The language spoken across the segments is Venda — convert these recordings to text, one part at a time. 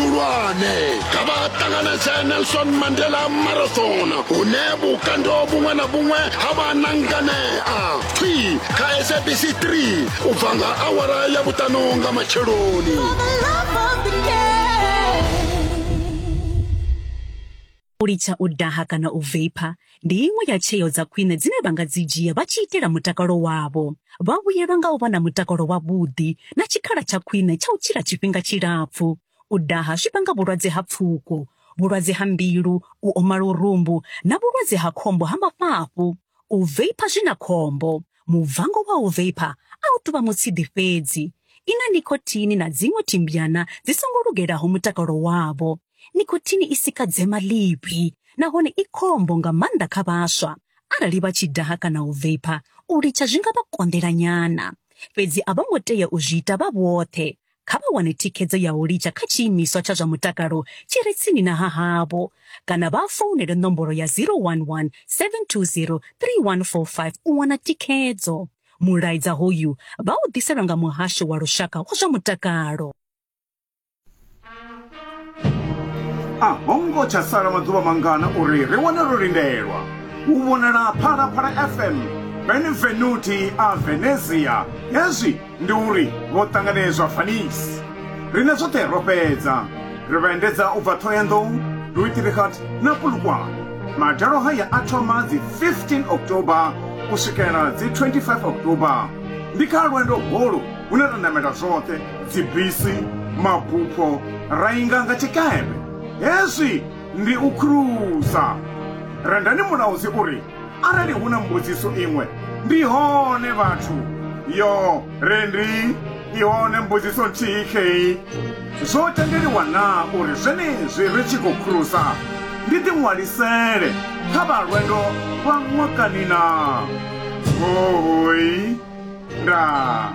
vhuhulwane kha vha ṱanganedze nelson mandela marathon hune vhukando vhuṅwe na vhuṅwe ha vha na nganea pfi kha sabc 3 u bva nga awara ya vhuṱanu nga matsheloni U litsha u daha kana u veipha ndi iṅwe ya tsheo dza khwine dzine vha nga dzi dzhia vha tshi itela mutakalo wavho. Vha vhuyelwa nga u vha na mutakalo wavhuḓi na tshikhala tsha khwine tsha u tshila tshifhinga tshilapfu. U daha zwi vhanga vhulwadze ha pfuko, vhulwadze ha mbilu, u oma lurumbu na vhulwadze ha khombo ha mafhafhu. U veipha zwi na khombo. Mubvango wa u veipha a u tou vha mutshidi fhedzi. I na nicotine na dziṅwe thimbyana dzi songo lugelaho mutakalo wavho. Nikhothini i sika dzema ḽivhi nahone i khombo nga maanḓa kha vhaswa. Arali vha tshi daha kana u veipha, u litsha zwi nga vha konḓela nyana. Fhedzi a vho ngo tea u zwi ita vha vhoṱhe. Kha vha wane thikhedzo ya u litsha kha tshiimiswa tsha zwa mutakalo tshi re tsini na hahavho kana vha founele nomboro ya 011 720 3145 u wana thikhedzo. Mulaedza hoyu vha u ḓiselwa nga Muhasho wa Lushaka wa zwa Mutakalo. a ho ngo tsha sala maḓuvha mangana uri ri wane ro lindelwa u vhonala phalaphala fm benevenuti a venezia hezwi ndi uri vho ṱanganedzwa fanisi riṋe zwoṱhe ro fhedza ri vha endedza u bva ṱhohoyanḓou luitirikhat na pulukwane madalo haya a thoma dzi 15 october u swikela dzi 25 october ndi kha lwendo holu hune ra namela zwoṱhe dzibisi, mabupho ra inga nga tshikepe. Hezwi ndi u khulusa. Rendani Mulaudzi u ri, Arali hu na mbudziso iṅwe, ndi hone vhathu. Yo ri ndi i hone mbudziso nthihi khei, Zwo tendeliwa naa uri zwenezwi ri tshi khou khulusa ndi ḓiṅwalisele kha vha lwendo lwa ṅwakani naa? Hooi. Ndaa.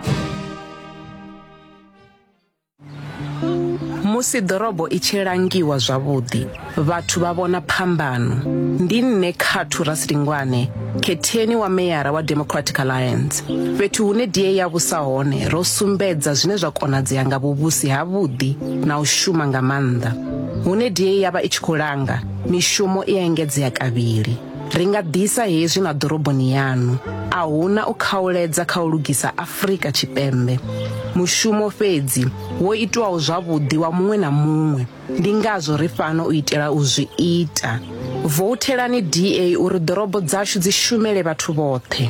Musi ḓorobo i tshi langiwa zwavhuḓi, vhathu vha vhona phambano. Ndi nṋe Khathu Rasilingwane, khetheni wa meyara wa Democratic Alliance. Fhethu hune DA ya vhusa hone, ro sumbedza zwine zwa konadzea nga vhuvhusi havhuḓi na u shuma nga maanḓa. Hune DA ya vha i tshi khou langa, mishumo i a engedzea kavhili. Ri nga ḓisa hezwi na ḓoroboni yaṋu. A huna u khauledza kha u lugisa Afrika Tshipembe. Mushumo fhedzi wo itwaho zwavhuḓi wa muṅwe na muṅwe. Ndi ngazwo ri fhano u itela u zwi ita. Vouthelani DA uri ḓorobo dzashu dzi shumele vhathu vhoṱhe.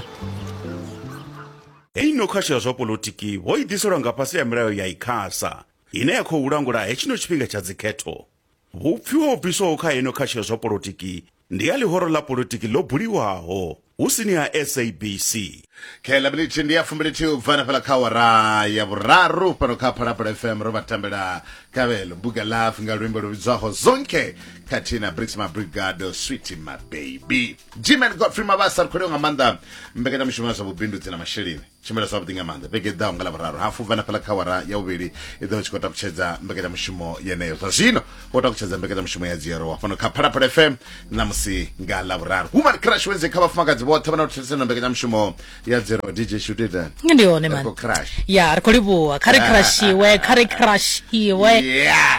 Hei no khasho ya zwa poḽotiki ho i ḓiselwa nga fhasi ha milayo ya Icasa, ine ya khou langula hetshino tshifhinga tsha dzikhetho. Hu pfiwa ho bviswaho kha ino khatsho ya zwa polotiki ndi ya ḽihoro ḽa polotiki ḽo buliwaho hu sini ha SABC. Kha iḽa minithi ndi ya fumbilithihi u bva hanefhaḽa kha awara ya vhuraru fhano kha Phalaphala FM ro vha tambela Kavelo Mbuga Love nga luimbo lu vhidzwaho Zonke khathihi na Brits Mabrigado Sweetie Mababy. Gman Godfrey Mabasa ri khou livha nga maanḓa mbekanyamushumo ya zwa vhubindudzi na masheleni. tshumelo zwavhuḓi nga maanḓa vhege ḓaho nga lavhuraru hafu bva na fhala kha wara ya vhuvhili i ḓo tshi khou takutshedza mbekanyamushumo yeneyo zwa zwino wo takutshedza mbekanyamushumo ya dziyero wa fhano kha phalaphala fm ṋamusi nga lavhuraru human crash wedze kha vhafumakadzi vhoṱhe vha na thetshelesa na mbekanyamushumo ya dziyero dj shutita ndi hone man crash ya ri khou livhuwa kha ri crashiwe kha ri crashiwe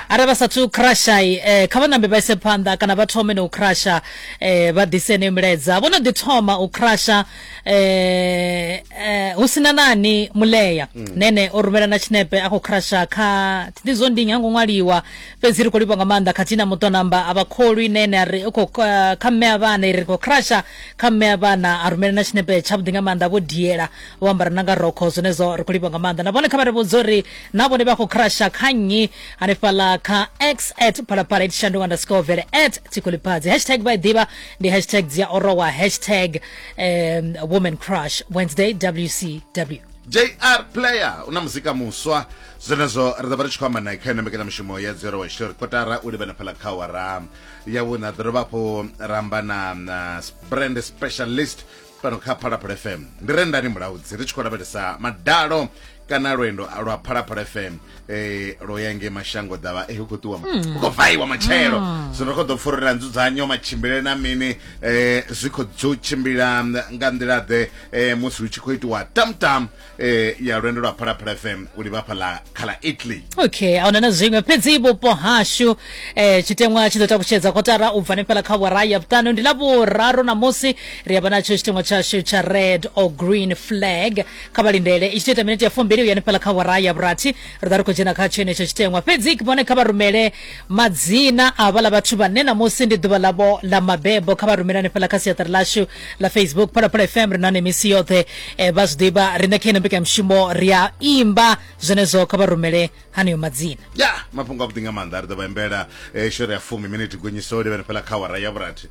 are vha sathu crasha eh, kha vha nambe vha ise phanḓa kana vha thome na u crasha eh, vha ḓise ne milaedza vho no ḓi thoma u crasha eh eh hu sina nani mulea mm. nene o rumela na tshinepe a khou crasha kha thi zwo ndi nyango ṅwaliwa fhedzi ri khou livha nga maanḓa khathihi na muṱo namba a vha kholwi nene a ri u khou eh, kha mme a vhana i ri khou crasha kha mme a vhana a rumela na tshinepe tshavhuḓi nga maanḓa vho diela vho ambara na nga rokho zwenezwo ri khou livha nga maanḓa na vhone kha vha ri vhudza uri na vhone vha khou crasha kha nnyi hanefhaḽa kha x at phalaphala itshandu underscore vele at tikoliphadzi hashtag vha i ḓivha ndi hashtag dzi a orowa hashtag um, woman crush wednesday wcw jr player u na muzika muswa zwenezwo ri ḓo vha ri tshi khou amba nae kha ino mbekanyamushumo ya dzero wa tshitori kotara u livhana phala kha wara ya vhuna ḓo dovha hafhu ra amba na na brand specialist fhano kha phalaphala fm ndi re ndani mulaudzi ri tshi khou lavhelesa madalo kana lwendo lwa phalaphala fm eh, lwo ya nge mashango ḓavha eh, hu khou ṱuwa hu khou vaiwa matshelo zwino ri khou ḓo pfa uri na nzudzanyo matshimbilele na mini eh, zwi khou dzo tshimbila nga nḓila ḓe eh, musi hu tshi khou itiwa tamtam eh ya lwendo lwa phalaphala fm u livha hafha ḽa kha ḽa italy okay a huna na zwiṅwe fhedzi vhupo hashu eh tshiteṅwa tshi ḓo takutshedza kotara u bva hanefhala kha wara ya vhuṱanu ndi ḽa vhuraru ṋamusi ri a vha natsho tshiteṅwa tshashu tsha red or green flag kha vha lindele i tshi tou ita minete ya fumbili u ya hanefhala kha wara ya vhurathi ri ḓa ri khou dzhena kha tshenetsho tshiteṅwa fhedzi vhone kha vha rumele madzina a vhaḽa vhathu vhane ṋamusi ndi ḓuvha ḽavho ḽa mabebo kha vha rumele hanefhala kha siaṱari ḽashu ḽa facebook phalaphala fm ri na hone misi yoṱhe um vha zwi ḓivha riṋe kha ino mbekanyamushumo ri a imba zwenezwo kha vha rumele haneyo madzina ya mafhungo a vhuḓi nga maanḓa ri ḓo vha imbela eh, shori ya fumi miniti gonyiso livhene fhela kha wara ya vhurathi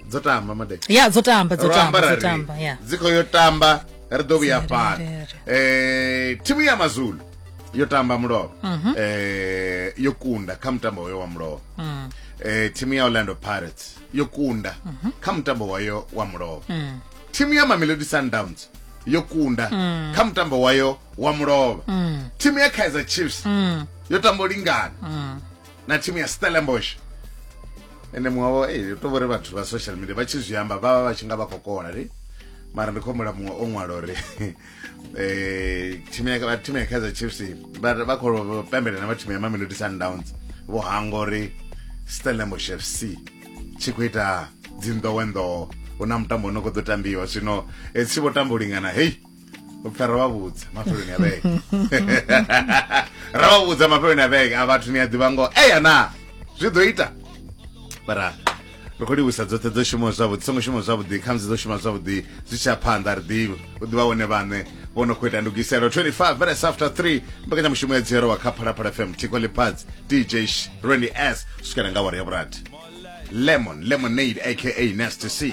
dzo tamba made ya dzo tamba dzo tamba dzo tamba ya dzi khou yo tamba ri ḓo vhuya fhano um thimu ya mazulu yo tamba mulovha um yo kunda kha mutambo hoyo wa mulovha um thimu ya orlando pirates yo kunda kha mutambo wayo wa mulovha Mm. thimu ya mamelodi sundowns yo kunda Mm. kha mutambo wayo wa mulovha Mm. thimu ya kaizer chiefs Mm. yo tambo lingana Mm. na thimu ya stellenbosh ende muṅwe wavo ei to vhori vhathu vha social media vha tshi zwi amba vha vha vha tshi nga vha khou kola ri mara ndi khou humbula muṅwe o ṅwala uri eh thimu ya vha thimu ya Kaizer Chiefs vha vha khou pembelela na vha thimu ya Mamelodi Sundowns vho hanga uri Stellenbosch FC tshi khou ita dzinḓowenḓowo hu na mutambo une khou ḓo tambiwa zwino eh, tshi vho tamba u lingana hei u pfha ra vha vhudza mafheloni a vhege ra vha vhudza mafheloni a vhege a vhathu ni a ḓivha ngoho eya na zwi ḓo ita bara ri khou livhusa dzoṱhe dzo shuma zwavhuḓi songo shuma zwavhuḓi khamusi dzo shuma zwavhuḓi zwi tsha phanḓa ri ḓivhi u ḓivha wone vhaṋe vho no khou ita ndugiselo 25 minutes after 3 mbekanyamushumo ya dzihero wa kha phalaphala fm thiko ḽipads dj rwendy s swikela nga wari ya vhurathi lemon lemonade aka nasty c